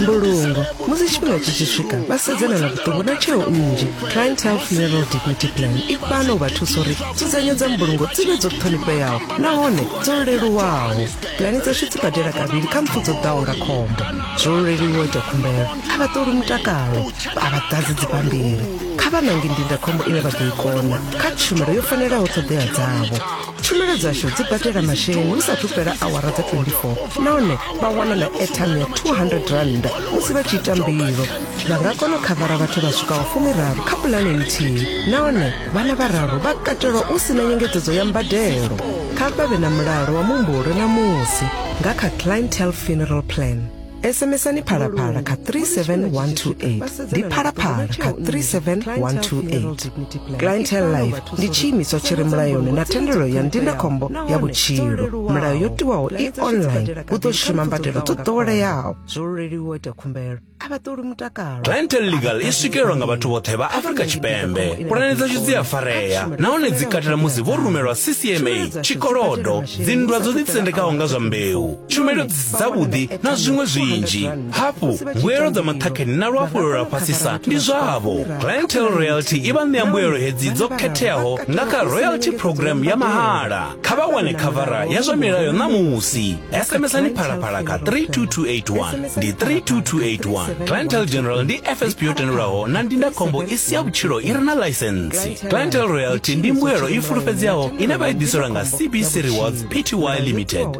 mbulungo musi tshifhinga tshi tshi swika vha sedzana na vhuṱungu na tsheo nnzhi client health funeral dignity plan i fhano u vha thusa uri dzudzanyo dza mbulungo dzi vhe dzo ṱhonifheaho nahone dzo leluwaho pulani dzashu dzi badela kavhili kha mpfu dzo ḓaho nga khombo zwo leluwa ita khumbelo a vha ṱoli mutakalo a vha ḓadzi dzibammbiri kha vha nange ndindakhombo ine vha ḓo i kona kha tshumelo yo fanelaho ṱhoḓea dzavho tshumelo dzashu dzi badela masheleni hu sathu fhela awara dza 24 nahone vha wana na airtime ya 200 rand musi vha tshi ita mbilo vha nga kona u khavara vhathu vha swikaho fumiraru kha pulane nthihi nahone vhana vhararu vha katelwa u si na nyengedzedzo ya mbadelo kha vha vhe na mulalo wa muhumbulo na musi nga kha clientele funeral plan SMSani phalaphala kha 37128 ndi phalaphala kha 37128 clientele life ndi tshiimiswa tshi re mulayoni na thendelo ya ndindakhombo ya vhutshilo mulayo yo tiwaho i online u ḓo shuma mbadelo dzo ḓoweleaho zwo leluwa ita khumbelo a vha ṱoli mutakalo clientele legal i swikelelwa nga vhathu vhoṱhe vha afrika tshipembe pulane dzashu dzi a farea nahone dzi katela musi vho rumelwa ccma tshikolodo dzinndwa dzo ḓitsendekaho nga zwa mbeu tshumelo dzavhuḓi na zwiṅwe zwinzhi hafhu mbuelo dza maṱhakheni na luhafhulelo lwa fhasisa ndi zwavho clientel royalty i vha ṋea mbuelo hedzi dzo khetheaho nga kha royalty program ya mahala kha vha wane khavara ya zwa milayo ṋamusi smsani phalaphala kha 32281 ndi 32281 clientel general ndi fsp yo tendelwaho na ndindakhombo i si ya vhutshilo i re na ḽaisensi clientel royalty ndi mbuelo i fulufhedzeaho ine vha i ḓiselwa nga cbc rewards pty limited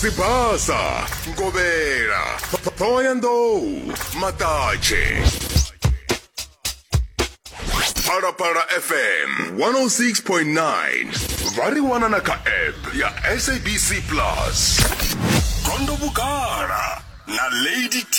sibasa nkobela thoyandou matatshe phalaphala fm 106.9 vha ri wana na kha app ya sabc plus gondo vhugala na lady t